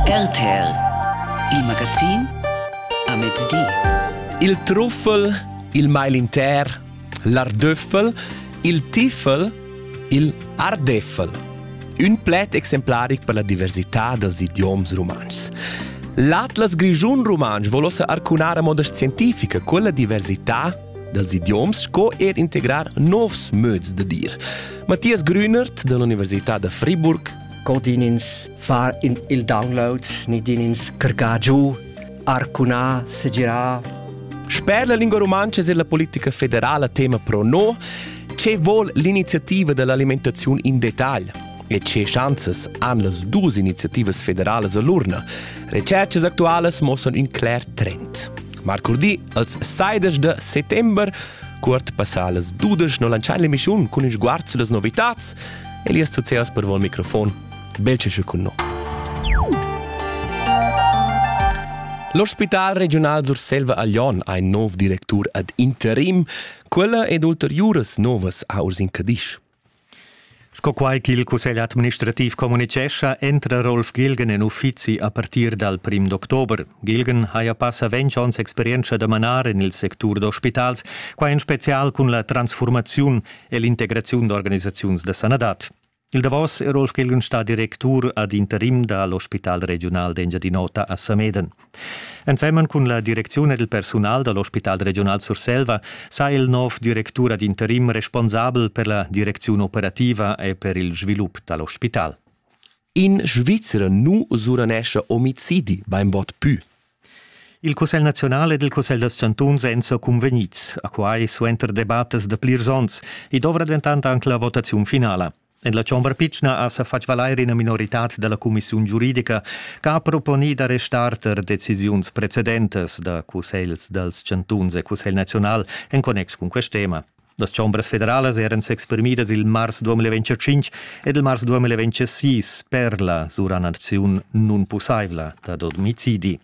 RTL, il magazin a mezdi. Il truffel, il mail inter, l'ardöffel, il tiffel, il ardeffel. Ün pled exemplaric per la diversità dels idioms rumantschs. L'Atlas Grischun Rumantsch vol ossa arcunar a moda scientifica quella diversità dels idioms sco er integrar novs möds da dir. Matthias Grünert dall'Università da Friburg co din ins far in, il download, ni din ins crgar giu, arcunar, segirar. Sper la lingua rumantscha è la politica federala tema pro no. Ce vuol l'iniziativa dell'alimentazione in dettagl? E ce chanzas han las dus iniziativas federalas a l'urna? Recercas actualas mossano in cler trend. Marcurdi, als 16 de settembre, Curt passà las dudes no lancian l'emissiun cun ils guards las novitats, Elias Tuceas per il microfon. Belcesche cun noi. L'ospital regional Surselva a Lyon ha in nov directur ad interim. Quella ed ulteriuras novas a Urs in Cadisch. Sco quai ch'il cussegl administrativ communitgescha, entra Rolf Gilgen en uffizi a partir dal prim d'october. Gilgen haja passa ventg onns experientscha da manar en il sectur d'ospitals, quai en spezial cun la transfurmaziun e l'integraziun d'organisaziuns da sanadad. Il davos è Rolf Gelgenstad, directur ad interim da l'Ospital regiunal d'Engiadin'Ota a Sameden. Ensemen cun la direcziun ed il persunal da l'Ospital regional Surselva sa il nov directur ad interim responsabel per la direcziun operativa e per il svilup da l'ospital. In Svizra nu usuranescha omicidi bainbod pü. Il Cussegl naziunal ed il Cussegl dals chantuns èn sa cunvegnids a quai suenter debattas da plirs onns. I dovra dentant anc la votaziun finala. En la chombra pitschna ha sa fatg valair ina minoritad da la cumissiun giuridica che ha proponì da restar tar decisiuns precedentas da cussegls dals chantuns e cussegl naziunal en connex cun quest tema. Las chombras federalas eran s'exprimidas il mars 2025 ed il mars 2026 per la sura naziun nunpussaivla dad omicidi.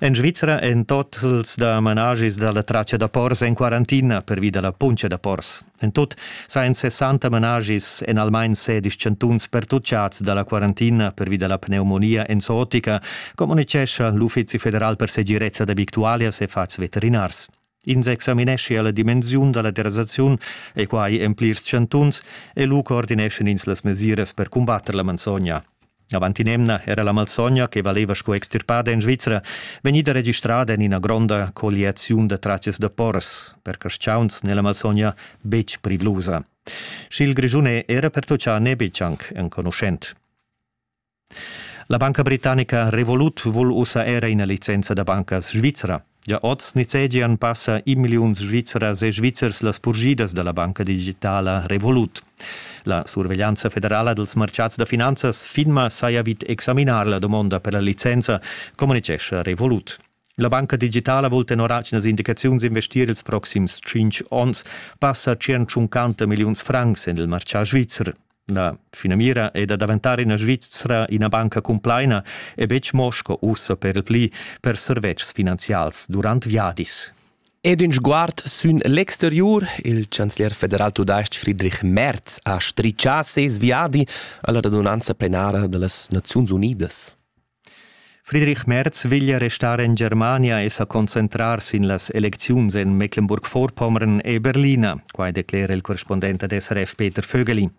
En Svizra èn totals da managis da la traccia da pors en quarantina pervi da la puntscha da pors. En tut sajan 60 managis en almain sedisch chantuns pertutgads da la quarantina pervi da la pneumonia enzotica, communitgescha l'Uffizi federal per segirezza da victualias e fatgs veterinars. Ins examineschia la dimensiun da la derasaziun e quai en plirs chantuns e lu coordineschan ins las mesiras per cumbatter la malsogna. Avant in'emna era la malsogna, che valeva sco extirpada en Svizra, vegnida registrada en ina gronda colliaziun da tratgas da pors, per carstgauns n'è la malsogna betg privlusa. Sch'il Grischun è era pertutgà n'è betg anc enconuschent. La banca britannica Revolut vul ussa era ina licenza da banca svizra. Gia oz nizzegian passa in milliun Svizras e Svizzers las purgidas da la banca digitala Revolut. La surveglianza federala dals martgads da finanzas FINMA saja vid examinar la domonda per la licenza, communitgescha Revolut. La banca digitala vul tenor atgnas indicaziuns investir ils proxims tschintg onns passa 150 milliuns francs en il martgà svizzer. La finamira è da daventar ina Svizra ina banca cumplaina e betg mo sco ussa per il pli per servetschs finanzials durant viadis. Ed in sguard sün l'exteriur, il chancelier federal tudais-ch Friedrich Merz ha strichà ses viadi alla radunanza plenara da las Naziuns Unidas. Friedrich Merz veglia restar en Germania e sa concentrar sin las elecziuns en Mecklenburg-Vorpommern e Berlina. Quai declera il correspondent ad SRF Peter Vögeli.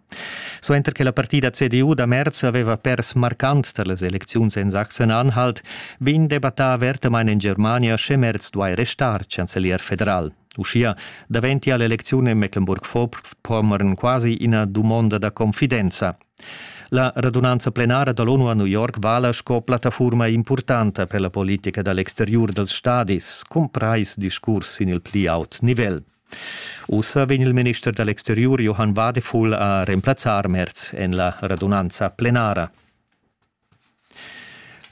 Suenter che la partida CDU da Merz aveva pers marcant tar las elecziuns en Sachsen-Anhalt, vegn debattà avertamain en Germania, sche Merz duai restar chancelier federal. Uschia daventia l'elecziun en Mecklenburg-Vorpommern quasi ina dumonda da confidenza. La radunanza plenara da l'ONU a New York vala sco plattafurma impurtanta per la politica da l'exteriur dals stadis, cumprais discurs sin il pli aut nivel. Ussa vegn il minister da l'exteriur Johann Wadefuhl a remplazzar Merz en la radunanza plenara.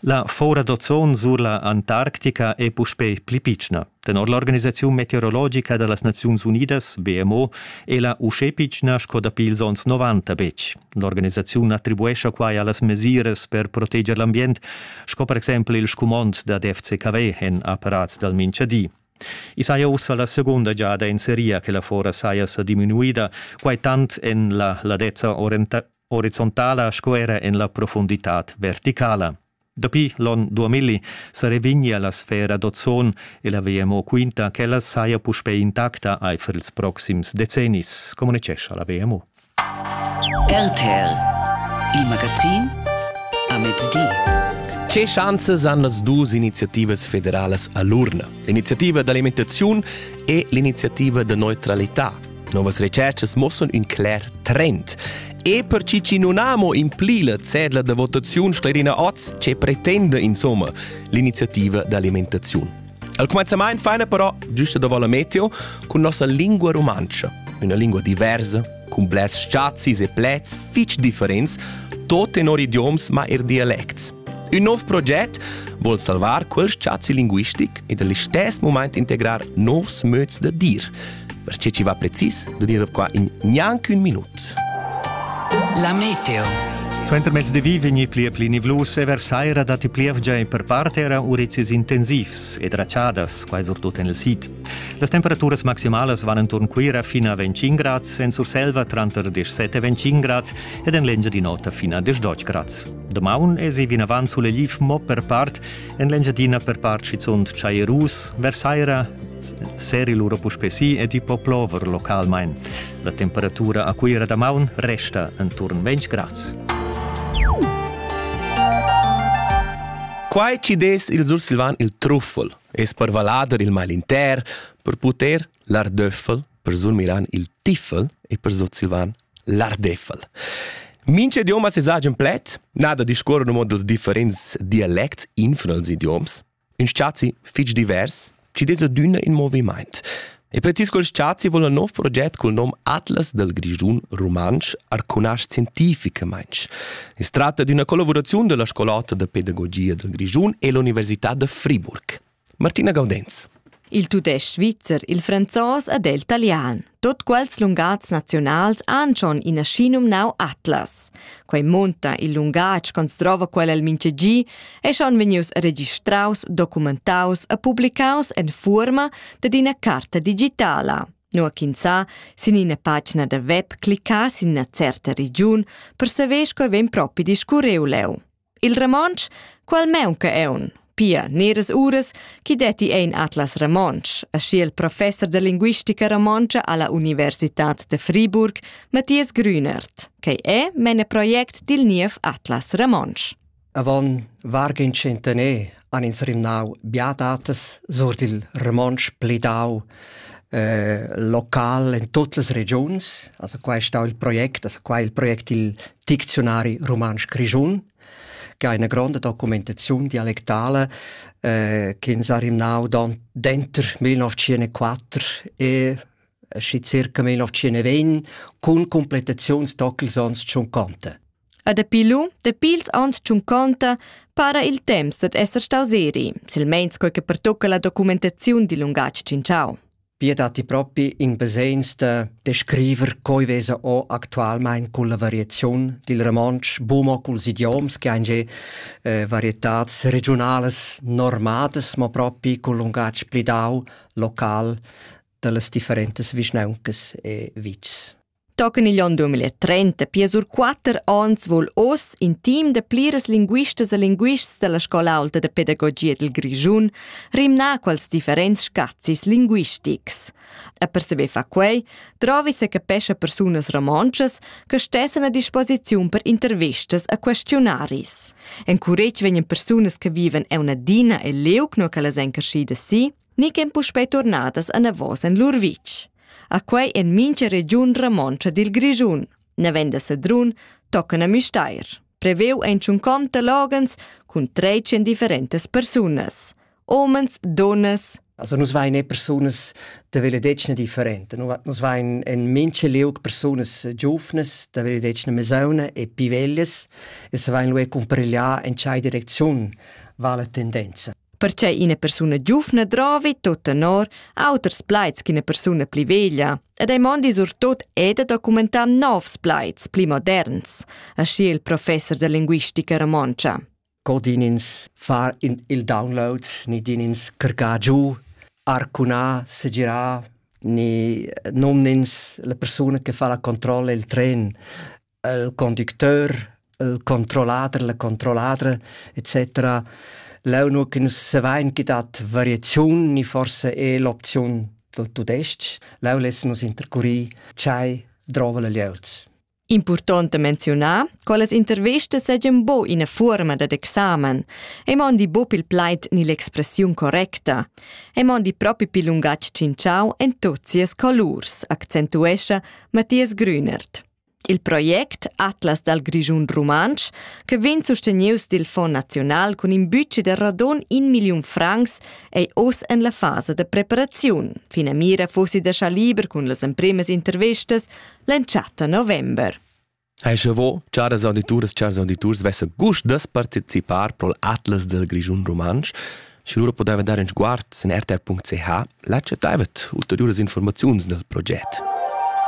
La foura d'ozon sur la Antarctica è puspè pli pitschna. Tenor l'organisaziun meteorologica da las Naziuns Unidas, BMO, è la uschè pitschna sco dapi ils onns 90 betg. L'organisaziun attribuescha quai a las mesiras per proteger l'ambient, sco per exempel il scumond dad FCKW en apparats dal minchadi. I saja ussa la segunda giada in seria che la fora saja sa diminuida, quai tant en la ladezza horizontala sco era en la profunditad verticala. Dapi l'onn 2000 sa revignia la sfera d'ozon e la WMO quinta ch'ella saja puspè intacta aifer ils proxims decennis, communicescha la WMO. RTL, il magazin a mezdi. Che chanzas han las duas iniziativas federalas a l'urna? L'iniziativa d'alimentaziun e l'iniziativa da neutralità Novas retscharchas mossan ün cler trend. E per chi chi non amo impli la cedla da votaziun Sterina Oz, che pretenda insomma l'iniziativa d'alimentaziun. Al comenzament faina però, giusta da Valle Meteo, con nossa lingua romancha, una lingua diversa, con blers sciazis e plets fitch differents, tot tenor idioms ma er dialects. Un nov proget vuol salvar quel spazi linguistic e dall'istes moment integrar novs möds da dir, perché ci va precis da dire qua in gnanc un minut. La meteo. Suenter mezdi di vegni pli pli nivlus e versaira datti plievgia e per part era urizis intensivs ed raciadas, quai surtut en il sid. Las temperaturas maximalas van intorn Cuira fino a 25 grads, en Surselva tranter 17 e 25 grads ed en l'Engia di nota fino a 18 grads. Domaun esi vinavant sulle Gif mo per part, en l'Engiadina per part schizunt Chaierus, Versaira seri lura puspè si ed i po plover localmain. La temperatura a Cuira damaun resta enturn 20 grads. Quai chi dess il Sursilvan il truffel es per vallader il mal inter, per puter l'ardöffel, per surmiran il tiffel e per Sursilvan l'ardeffel. Mince idiomas es agen pled, nada discorre no dals differents dialects infra els idioms, Ün spazi fich divers chi'd es adüna in movimaint. E precis quel spazi voul ün nouv proget cul nom Atlas dal Grischun rumantsch arcunasc scientificamaing. I's tratta d'üna collavuraziun da la Scol'ota da pedagogia dal Grischun e l'Università da Friburg. Martina Gaudenz. Il tudais-ch svizzer, il franzos ed el talian. Tot quels lungats nazionals han schon ina schi numnau Atlas. Quei monta il lungatg construva quel el mintgegi e schon vegnius registraus, documentaus e publicaus en fuorma dad ina carta digitala. Nua ch'ins sa, sin ina pagina da web, cliccà sin ina certa regiun, persevesch quei vegn propi discurreu leu. Il romontsch, qual meunca eun, pia neras uras chi detti ein Atlas Romontsch, aschi il professor de linguistica romontscha alla Universitad de Friburg, Matthias Grünert, che è mene project dil niev Atlas Romontsch. Avant vargin centener han ins rimnau biadatas sur il romontsch plidau eh, local in tutte le regions, also qua è stato il project, also qua il project il Dicziunari rumantsch grischun, che ha ina gronda documentaziun dialectale eh, ch'ins ha rimnau dentro 1904 e schi circa 1920 cun completaziuns d'ocels ans conta. A dapi lu, dapi ils ans conta, para il temps dad esser staus eri, silmeins quei che pertocca la documentaziun dil lungatg cinciau. Pia datti propi in basegns da descriver coi vesa o actualmein culla variaziun dil romontsch, buca culs idioms che ein già eh, varietats regiunalas normadas, ma propi cul lungatg plidau, local, dallas differentas vischnauncas e vitgs. Tochen igl onn 2030 pia sur quater onns vul oz in team da pliras linguistas e linguists dalla scola aulta de pedagogia dil Grischun rimnar quels differents scazis linguistics. E per saber fa quei, trovi se capescha persunas romontschas che stessen a disposiziun per intervistas e questionaris. Encuretg vegnan persunas che viven eunadina e leuc no che las encarschidas si, ni ch'en puspei turnadas anavos en lur vitg. A quei en mintga regiun romontscha dil Grischun. Navenda Sedrun toccana Müstair. Preveu ein tschunconta loghens cun trecen differentas persunas. Omens, donnas, Also nus vein e persunas da veledetgna differente. Nus vein en mince liug persunas giuvnas da veledetgna mesauna e pivellas e se vein lu cumparegliar en tgei direcziun va la tendenza. Perche ina persuna giuvna drovi tot tenor auters plaids ch'ina persuna pli veglia ed ei mondi surtot è da documentar novs plaids pli moderns, aschi il professor da linguistica romontscha. Co din ins far in il download, ni din ins cargar giù, arcunà, segirà, ni nomnins la persuna che fa la controlla il tren. il conducteur, il controllader, la controlladra, etc. Leu nu che nus savein chi dat variaziun ni forse è l'opziun dal tudestg. Leu less nus intercurir tschai drova la lieus. Important menziunar, quelles intervistas seigien bo ina fuorma dad examen, e mondi bo pil plaid ni l'expressiun correcta, e mondi propi pil lungatg cinciau en tot sias colurs, accentuescha Matthias Grünert. Il project Atlas dal Grischun Rumantsch, che vegn sustenius dil Fond naziunal cun in budget da radon in milliun francs, ei oz en la fasa da preparaziun. Finamira fussi da schar liber cun las empremas intervistas l'entschatta november. Hai sche vo, charas audituras, chars auditurs, vessa gust das participar pro l'Atlas del Grischun Rumantsch. Sche lura podeva dar in sguard in rtr.ch, la chattaivet ulteriuras informaziuns del proget.